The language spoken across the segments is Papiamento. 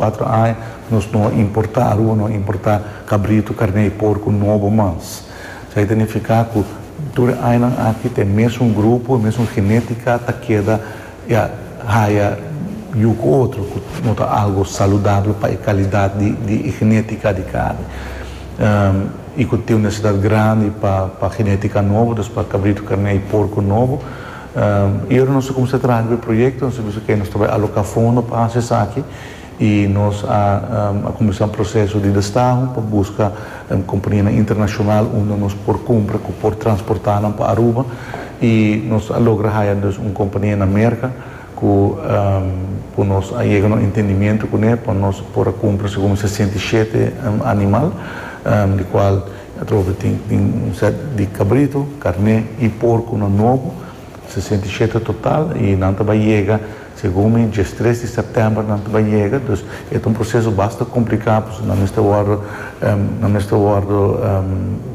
Kuatro aña nos no a importá aruba, no a importá kabritu, karné i porku nobo mas. Esei ta nifiká ku tur e añanan aki ta e mesun grupo, e mesun genétika ta keda ya haya yu ku otro, ku no ta algu saludabel pa e kalidat di e genétika di karni. I ku tin un nesidat grandi pa genétika nobo, dus pa kabritu, karné i porku nobo. Y ora nos a cuminsa traha cu e proyecto nos a bisa ke nos ta bay aloca fondo pa haci esaki y nos a cuminsa un proceso di destaho pa busca companianan internacional unda nos por cumpra cu por transporta nan pa Aruba y nos a logra haya dus un compania na Merca cu cu nos a yega na un entendimiento cune pa nos por a cumpra segun mi sesenta i shete animal di cual Atrobe tin tin un set di kabrito, karné i porkunan nobo, sesenta i shete total, i nan ta bai yega segun mi diestres di sèptèmber nan ta bai yega. Dus e ta un proseso basta kompliká pasobra nan mester wòrdu nan mester wòrdu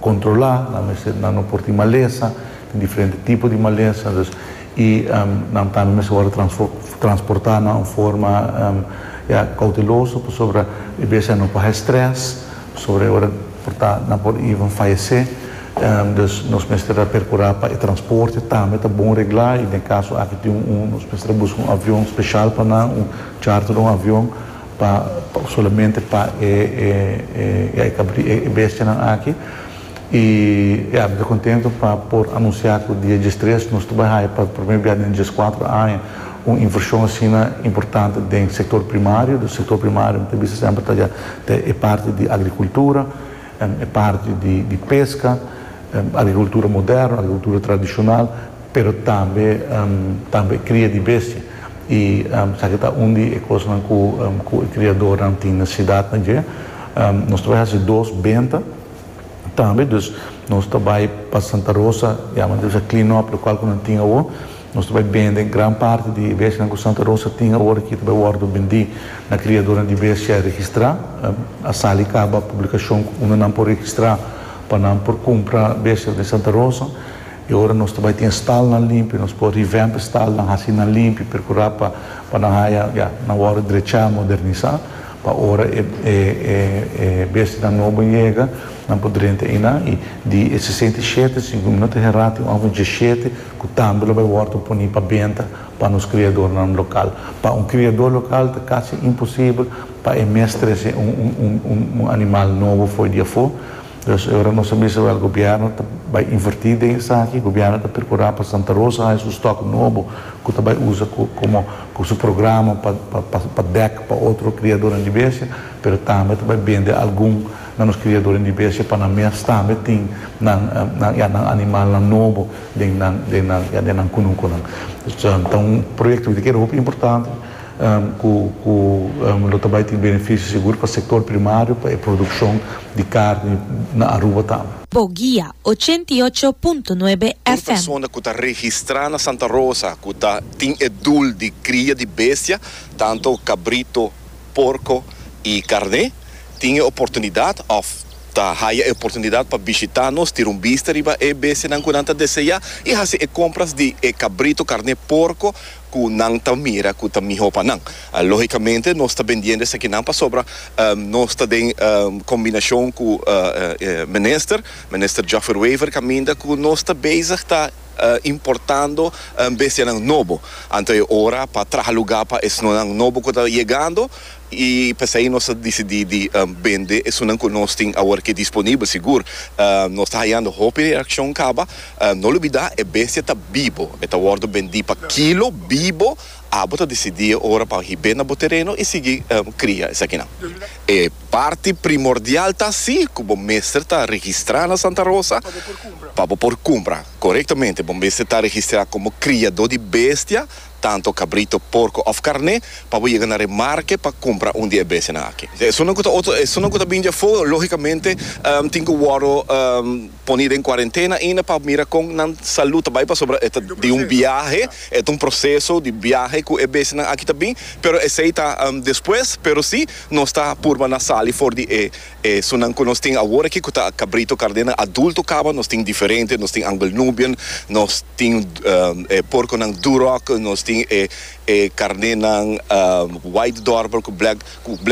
kontrolá, nan mester nan no por tin malesa, tin diferente tipo di malesa, dus i nan tambe mester wòrdu transfo transportá na un forma ya kouteloso pasobra e bese nan por haña strès Sobra e ora por ta, nan por even fayesé. Dus nos mester a percurá pa e transporte tambe ta bon reglá. I den e caso aki tin un, un, nos mester a busca un avion special pa nan, un charter di un avion pa, solamente pa e, e, e, e, e, e bestianan aki. I e a bira kontentu pa por anunsiá ku dia djestres nos ta bai haña pa promé bia den djeskuater aña un invershon asina importante den sektor primario. Nos sektor primario mi ta bisa semper ta dja ta e parti di agrikultura, e parti di peska, agrikultura moderno, agrikultura tradishonal, pero tambe tambe kria di bestia. I esaki ta un di e kosnan ku e kriadornan tin na sidat na dje. Nos ta bai hasi dos benta. tambe dus nos ta bai pa Santa Rosa ya manera sa clean up local cu nan tin awor nos ta bai bende gran parti di e bestianan cu Santa Rosa tin awor aki ta bai wordo bendi na criadonan di bestia registra a sali caba publicacion unda nan por registra pa nan por cumpra bestia den Santa Rosa. I ora nos ta bai tin stalnan limpi, nos por revamp e stalnan, hasi nan limpi, percura pa pa nan haya, ya, nan worde drechá, modernizá, pa ora e e e e bestinan nobo yega, nan por drenta einá. I di e sesenta i shete, si mi no ta herrá, tin un òf di diashete cu tambe lo bai worde poni pa benta pa nos criadornan local. Pa un criador local ta casi imposibel pa e mes trece un un un un animal nobo fo'i di afó. Pues e ora nos a bisa wèl gobièrnu ta bai invertí den esaki, gobièrnu ta perkurá pa Santa Rosa haña su stòk nobo ku ta bai usa komo ku su programa pa pa dèk pa otro kriadornan di besia, pero tambe ta bai bende algun na nos kriadornan di besia pa nan mes tambe tin nan nan ya nan animalnan nobo den nan den nan ya den nan kunukunan. Pues ta un proyektonan di keda hopi importante. ku lo ta bai tin benefisio sigur pa sektor primario, pa e produkshon di karni na Aruba tambe. Boguia, ochenta i ocho punto nuebe Un FM. persona ku ta registrá na Santa Rosa ku ta tin e dul di kria di bestia, tantu kabrito, porko i karné, tin e oportunidat òf ta haya e oportunidat pa bishitá nos, tira un bista riba e bestianan ku nan ta deseá i hasi e kompras di e kabrito, karné, porko. cu nan ta mira cu ta miho pa nan. Logicamente nos ta bendiendo esakinan pasobra nos ta den combinacion cu Minister, Minister Joffer Wever caminda cu nos ta bezig ta importando bestianan nobo. Anto e ora pa traha lugar pa esnonan nobo cu ta yegando. I p'esei nos a disidí di bende esunnan ku nos tin awor ke disponibel. Sigur, nos ta hayando hopi reakshon kaba. No lubidá, e bestia ta bibo. E ta wòrdu bendí pa kilo, bibo. Abo ta disidí e ora pa hib'é na bo tereno i sigui kria esakinan. E parti primordial ta así ku bo mester ta registrá na Santa Rosa pa bo por kumpra. Korektamente, bo mester ta registrá komo kriadó di bestia. tanto cabrito, porco of carne, pa bo yega na Remarque pa cumpra un di e besenan aki. Esunnan cu ta otro, esunnan cu ta bini dje afo, logicamente tin cu wordo poni den cuarentena ainda pa mira con nan salud ta bay pasobra e ta di un biahe, e ta un proceso di biahe cu e besenan aki ta bin, pero esey ta despues, pero si nos ta purba na sali for di e. E sunan ku nos tin awor aki ku ta kabrito karnenan adulto kaba, nos tin diferente, nos tin Angle Nubian, nos tin e porkonan Duroc, nos tin e karnenan White Dorper ku Black